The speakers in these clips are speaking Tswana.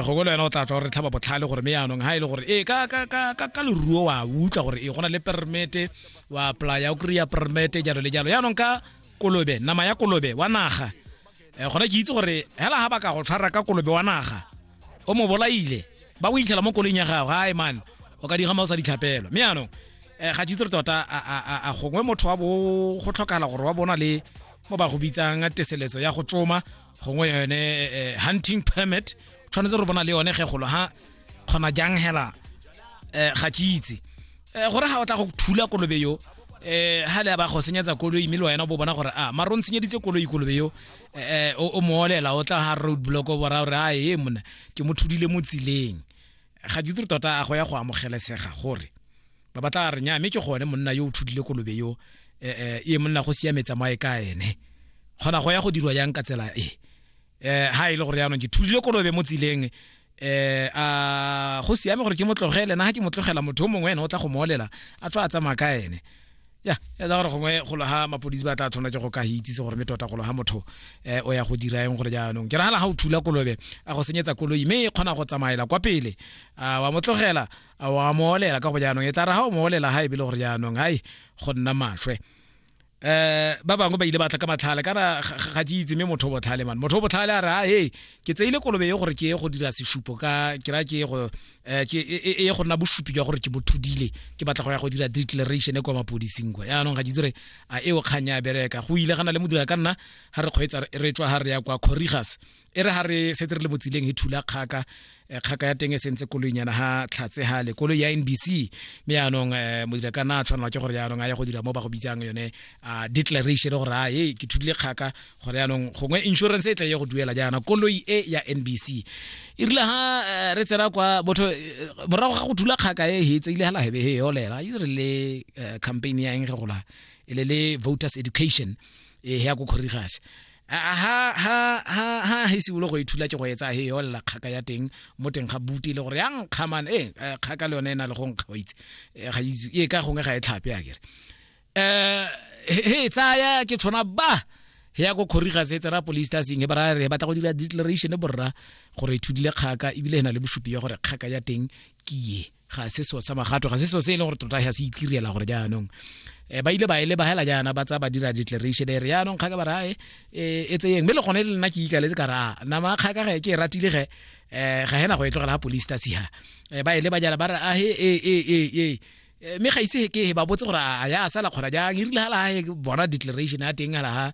gogo le wena o tla tswa gore tlhaba botlhale gore me yaanong ga e le gore ee ka, ka, ka, ka, ka leruo wa utlwa gore e gona le permete wa playa o kry-a permete jalo le jalo yaanong ka kolobe nama ya kolobe wa naga um gona ke itse gore hela ga ba ka go tshwara ka kolobe wa naga o mo bolaile ba go itlhela mo koleng ya gago gae mane o ka digama o sa ditlhapelo mme yaanong um ga ke itse re tota a gongwe motho wa bo go tlhokagala gore wa bona le mo ba go bitsang teseletso ya go tsoma gongwe yone eh, hunting permit tshwanetse re bona le yone ge golo ha kgona jang hela eh, ga ke itse Eh, gore ga o tla go thula kolobe yo eh ha le ba go senyetsa koloi mme le wena o bo bona gore a maro ntshenyeditse koloi kolobe yo eh o o mo olela o tla ha road block o bora gore a e mona ke mo thudile mo tsileng ga ke itse gore tota a go ya go amogelesega gore ba ba tla re nya mme ke gone monna yo o thudile kolobe yo eh, eh, e monna go siametsa mo a e ka ene kgona go ya go dirwa yang ka tsela e eh ha ile e gore yaanong ke thudile kolobe mo tsileng eh a go siame gore ke motlogele na ha ke motlogela motho mongwe ene o tla go molela a tswa a tsamaya ka ene ya ya tsa gore gongwe golo ha mapodisi ba tla tshwana ke go ka hitse se gore me tota golo ha motho eh o ya go dira eng gore jaanong ke ragala ga o thula kolobe a go senyetsa koloi mme e kgona go tsamaela kwa pele a wa motlogela a wa mo olela ka go jaanong e tla ra ga o mo olela ga e bile gore jaanong hai go nna maswe eh ba bangwe ba ile ba tla ka matlhale kana ga ke itse mme motho o botlhale man motho o botlhale a re a hey ke tseile kolobe e gore ke ye go dira seshupo ka ke ra ke ye go eh, ke e, e, e ye go nna bosupi jwa gore ke bothudile ke batla go ya go dira declaration e kwa mapodising kwa yaanong ga ke itse re a eo kgang ya bereka go ile gana le modira ka nna ga re kgweetsa re tswa ga re ya kwa corrigas e re ga re setse re le mo tsileng e thula kgaka eh, kgaka ya teng e sentse koloinyana ga tlhatse ga le koloi ya nbc mme yaanong um eh, modira ka na a tshwanelwa ke gore yaanong a ya go dira mo ba go bitsang yone a declaration gore a e ke thudile kgaka gore yaanong gongwe insurance e tla ye go duela jaana koloi e ya nbc e rile ga eh, re tsena kwa botho morago ga go thula kgaka e hetse ile ga lahebe he yolela e re le campaign ya eng ge gola e le le voters education e ya ko kgorigase ha ha ha ha he sibulo go ithula ke go etsa he yo lla kgaka ya teng mo teng ga buti le gore ya nkga man eh, eh kgaka le yone e na le go nkga wa itse eh, ga itse e ka gongwe ga e tlhape a kere eh he tsaya ke tshwana ba he ya go khoriga se tsera police ta sing he bara re batla go dira declaration borra gore ithudile kgaka ebile e na le bosupi ya gore kgaka ya teng ke ye ga se so sa magato ga se so se e leng gore tota ga se itirela gore jaanong um ba ile ba e leba hela jaana ba tsa ba dira declaration e re jaanong kgaka ba rae e, e tseyeng mme le gone le nna ke ikaletse ka raa nama kgaka ge ke e ratile ge um ga hena go e tlogela ga police tasiha um ba e leba jana ba re ahe e e e e mme ga ise ke ba botse gore a ya sala kgona jang e rile ga laga bona declaration ya teng ga laga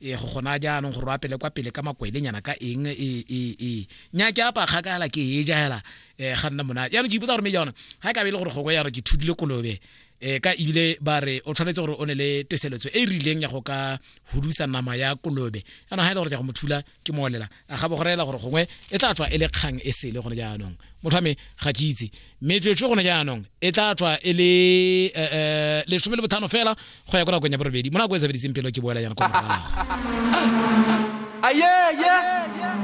e go gona jaanong gore o apele kwa pele ka makwelenyana ka eng e e e nya ke apa kgakala ke e ja hela eh ga nna mona ya no ke ipotsa gore me jana ha ka be le gore go go ya re ke thudile kolobe eh ka ibile ba re o tshwanetse gore o ne le teseletso e e rileng ya go ka hudusa nama ya kolobe yana ha ile e gore ja go mothula ke molela a ga bogorela gore gongwe e tla tswa e le kgang e sele gone jaanong motho wa me ga ke itse metswetswe gone jaanong e tla tswa e le eh, eh, lesome le bothano fela go ya ko nakong ya borobedi mo nako e sebediseng pelo ke boela yana kwa morago ayeye